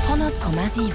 100,7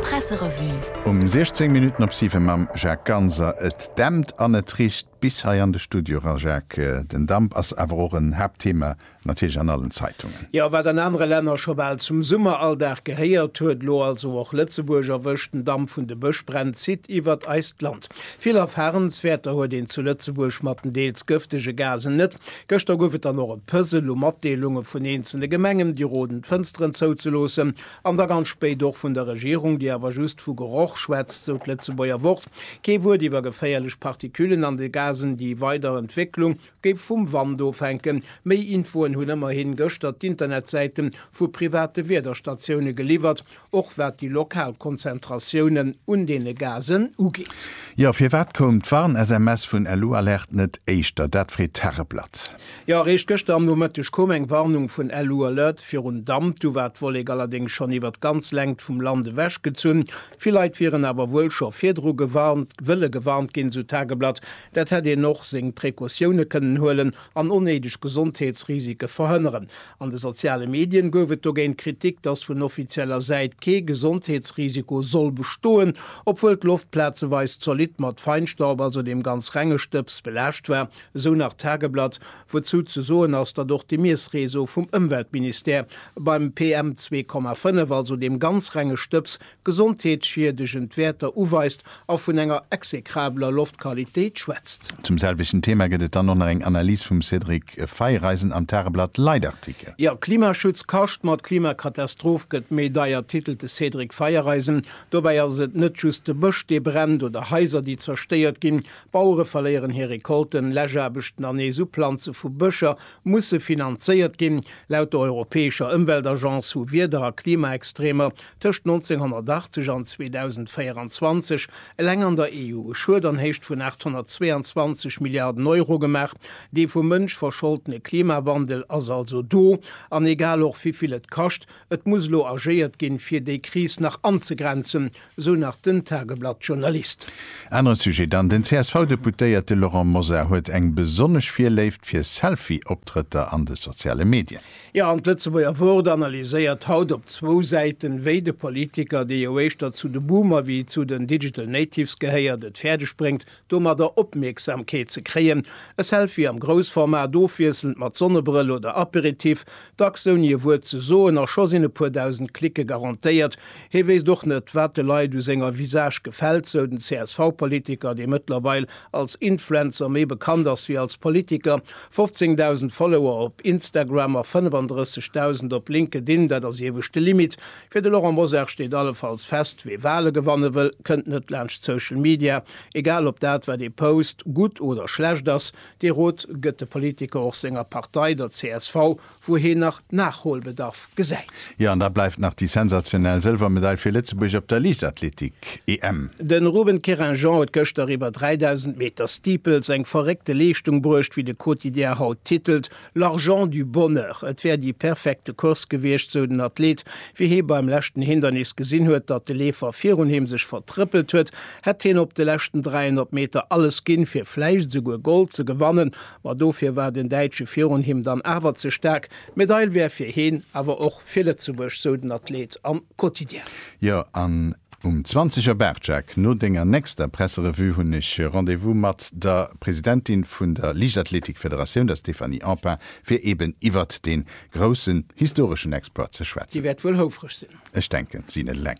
Presserevue. Um 16 Minutten op 7 mam Jacques Ganser. Et dämpt an et richt bis hei an de Studio era, Jacques. Den Damp ass awer och en Haaptthema natierlech an allen Zeitungen. Jo, wat an anere Länner scho bal zum Summeralldag gehéiert huet, lo also och Lëtzebuerg erwëscht. Den Damp vun de Bëschbränn zitt iwwert eist Land. Vill Erfarenswäerter huet een zu Lëtzebuerg mat den deels gëftege Gasen net. Gëschter gouf et dann och e Puzzle u Matdeelunge vun eenzele Gemengen, déi roden d'Fënsteren zouzeloossen, an da ganz spéit och vun der Regierung, déi awer just vu Geroch schwätzt, sou d'Lëtzebuerger Wort. Kee Wuert iwwer geféierlech Particulen an de Gasen. Déi weider Entwécklung géif vum Wand ofhänken. Méi Infoen hunn ëmmerhi gëschter d'Internetsäite vu private Wiederstatioune geliwwert. Och wat déi lokal Konzentratiounen un deene Gasen ugeet. Jo, firwat koum d'Warn-SMS vun LU Alert net éischter? Dat freet d'Tageblatt. Jo, eréischt gëschter am Nomëtteg koum eng Warnung vun LU Alert virun Damp. Du war d'Wollek allerdéngs schonn iwwer d'ganz Längt vum Land ewech gezunn. Vill Leit wieren awer wuel scho virdru gewarnt, wëlle gewarnt ginn, esou d'Tageblatt. Dat hätt een och seng Precautioune kënnen huelen an onnéideg Gesondheetsrisike verhënneren. An de soziale Medien gouf et dogéint Kritik, dass vun offizieller Säit kee Gesondheetsrisiko soll bestoen, obwuel d'Loft plazeweis zolidd mat Feinstaub, also deem ganz renge Stëbs, belaascht war, esou nach d'Tageblatt, wouzou ze soen ass, datt och de Miessreseau vum Ëmweltministère beim PM 2,5, also deem ganz renge Stëbs, gesondheetsschiedegend Wäerter uweist a vun enger execrabeler Loftqualitéit schwätzt. Zum selwechten Thema gëtt et dann och nach eng Analys vum Cédric Feiereisen am Tageblatt Leitartikel. Jo, Klimaschutz kascht, ma d'Klimakatastroph gëtt méi deier, titelt de Cédric Feiereisen. Dobäi ass et net just de Bësch, dee brennt, oder Haiser, déi zerstéiert ginn. Bauere verléieren hir Recolten, Läschaarbechten an nees Uplanze vu Bëscher musse finanzéiert ginn. Laut der europäescher Ëmweltagence hu Wieder a Klimaextreemer tëscht 1980 an 2024 eleng an der EU e Schued an Héicht vun 822 Milliarden Euro gemaach. Dee vum Mënsch verscholtene Klimawandel ass also do, an egal och wéi vill et kascht, et muss elo agéiert ginn, fir déi Kris nach anzegrenzen, sou nach den Tageblatt-Journalist. Anere Sujet dann, Den CSV-Deputéierte Laurent Mosar huet eng besonnesch Virléift fir Selfie-Optrëtter an de soziale Medien. Jo, an d'Lëtzebuerger Wort analyséiert haut op zwou Säiten, wéi de Politiker, dee jo éischter zu de Boomer wéi zu den Digital Natives gehéiert, et fäerdeg bréngt, domadder Opmierksamkeet ze kréien. E Selfie am Groussformat, ofwiesselnd mat Sonnebrëll oder Aperitif, dacks ouni e Wuert ze soen, a scho sinn e puer dausend Clicke garantéiert. Hee wéisst och net, wat de Leit u senger Visage gefält, sou den CSV-Politiker, dee mëttlerweil als Influencer méi bekannt ass wéi als Politiker, 15.000 Follower op Instagram a 35.000 op LinkedIn, dat ass iewescht de Limit. Fir de Laurent Mosar steet allefalls fest, Wee Wale gewanne wëll, kënnt net laanscht Social Media, egal ob dat wat ee post gutt oder schlecht ass. Dee Rot gëtt de Politiker och senger Partei, der csv, wou hien nach Nachholbedarf gesäit. Jo, an da bleift nach déi sensationell Sëlwermedail fir Lëtzebuerg op der Liichtathletik-EM. De Ruben Querinjean huet gëschter iwwer 3.000 Meter Steeples eng verréckte Leeschtung bruecht, wéi de Quotidien haut titelt, L'argent du bonheur. Et wär déi perfekte Course gewiescht, sou den Athlet. Wéi hie beim leschten Hindernis gesinn huet, datt de Leefer virun him sech vertrëppelt huet, hätt hien op de leschten 300 Meter alles ginn, fir vläicht esouguer Gold ze gewannen. Ma dofir war den Däitsche virun him dann awer ze staark. D'Medail wär fir heen awer och fir Lëtzebuerg, sou den Athleet am Quotidien. Jo, an um 20 Auer, Barjack, no denger nächster Presserevue hunn ech Rendez-vous mat der Presidentin vun der Liichtathletikfederatioun, der Stéphanie Empain, fir eben iwwert dee groussen historeschen Exploit ze schwätzen. Déi wäert wuel houfreg sinn. Ech denken, si net eleng.